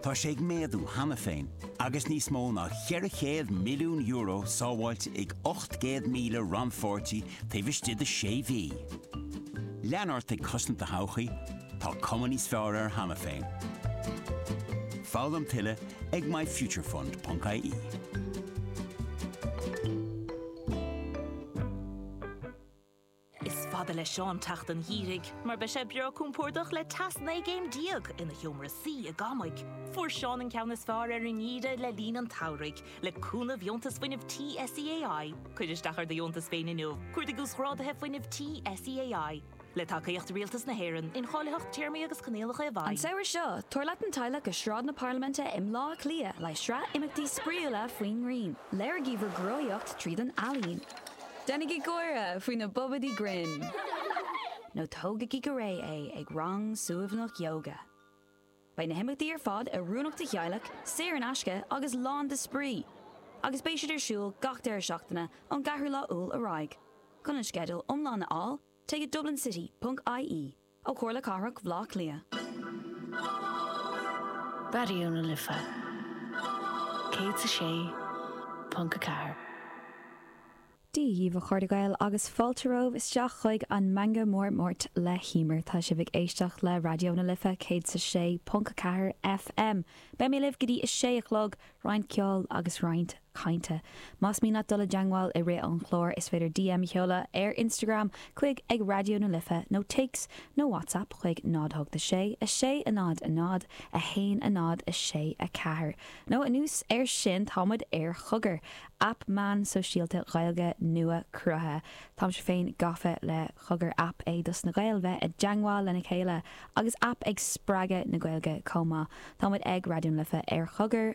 Tá sé ag méadú cheana féin agus níos mó ná €400 milliún sábháilte ag 800,000 rannpháirtí taobh istigh de sé mhí. Lean ort ag cosaint do thodhchaí, tá cuma níos fearr air cheana féin. Foghlaim tuilleadh ag myfuturefund.ie. Is fada le Seán teacht an gheimhridh mar beidh sé breá compordach le teas 19 gcéim ina sheomra suí i gcónaí. Fuair Seán an ceann is fearr ar an ngeimhreadh le linn an tsamhraidh, le cúnamh Dheontas Fuinnimh Tí SEAI. Cuir isteach ar do dheontas féin inniu, Cuardaigh Uasghrádaithe Fuinnimh Tí SEAI. Le tacaíocht Rialtas na hÉireann, incháilitheacht Téarmaí agus Coinníollacha i bhfeidhm. An samhradh seo, tabhair leat an teaghlach go Sráid na Parlaiminte i mBleá Cliath le haghaidh sraith imeachtaí spraíúla faoin ngrian. Léirigí bhur gcruthaitheacht tríd an ealaín. Déanaigí gáire faoi na bobaidí grinn! Nó tógaigí go réidh é ag rang suaimhneach ióga! Beidh na himeachtaí ar fad oiriúnach do theaghlaigh, saor in aisce agus lán de spraoi, agus beidh siad ar siúl gach deireadh seachtaine ón gceathrú lá Iúil ar aghaidh. Chun an sceideal iomlán a fháil, téigh go dublincity.ie. Ó Comhairle Cathrach Bhleá Cliath. Raidió na Life 106.4. Dia dhaoibh a chairde Gael agus fáilte romhaibh isteach chuig an Meangadh Mór Máirt le hEimear. Tá sibh ag éisteacht le Raidió na Life 106.4 FM. Beidh mé libh go dtí 6 a chlog, roinnt ceoil agus roinnt cainte. Más mian leat dul i dteangmháil i rith an chláir is féidir DM a sheoladh ar Instagram chuig ag Raidió na Life nó téacs nó WhatsApp chuig 0 8 6 6 0 0 1 0 6 4 nó anuas ar sin tá muid ar Chogar, aip meán sóisialta Ghaeilge nua cruthaithe. Táimse féin gafa le Cogar aip é dos na Gaeil bheith i dteangmháil lena chéile agus aip ag spreagadh na Gaeilge chomh maith. Tá muid ag Raidió na Life ar Chogar!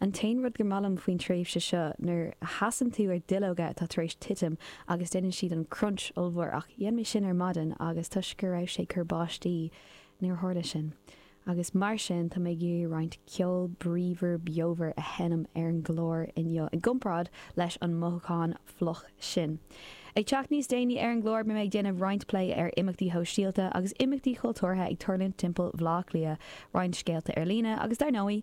An t-aon rud go maith liom faoin tréimhse seo nuair a sheasann tú ar duilleoga atá tar éis titim agus déanann siad an crunch ollmhór ach dhein mé sin ar maidin agus toisc go raibh sé ag cur báistí níor tharla sin agus mar sin tá mé ag iarraidh roinnt ceol bríomhar beomhar a sheinm ar an gclár inniu i gcomparáid leis an mothúchán fliuch sin. Ag teacht níos déanaí ar an gclár beidh mé ag déanamh roinnt plé ar imeachtaí shóisialta agus imeachtaí chultúrtha ag tarlúint timpeall Bhleá Cliath, roinnt scéalta ar líne agus dar ndóigh,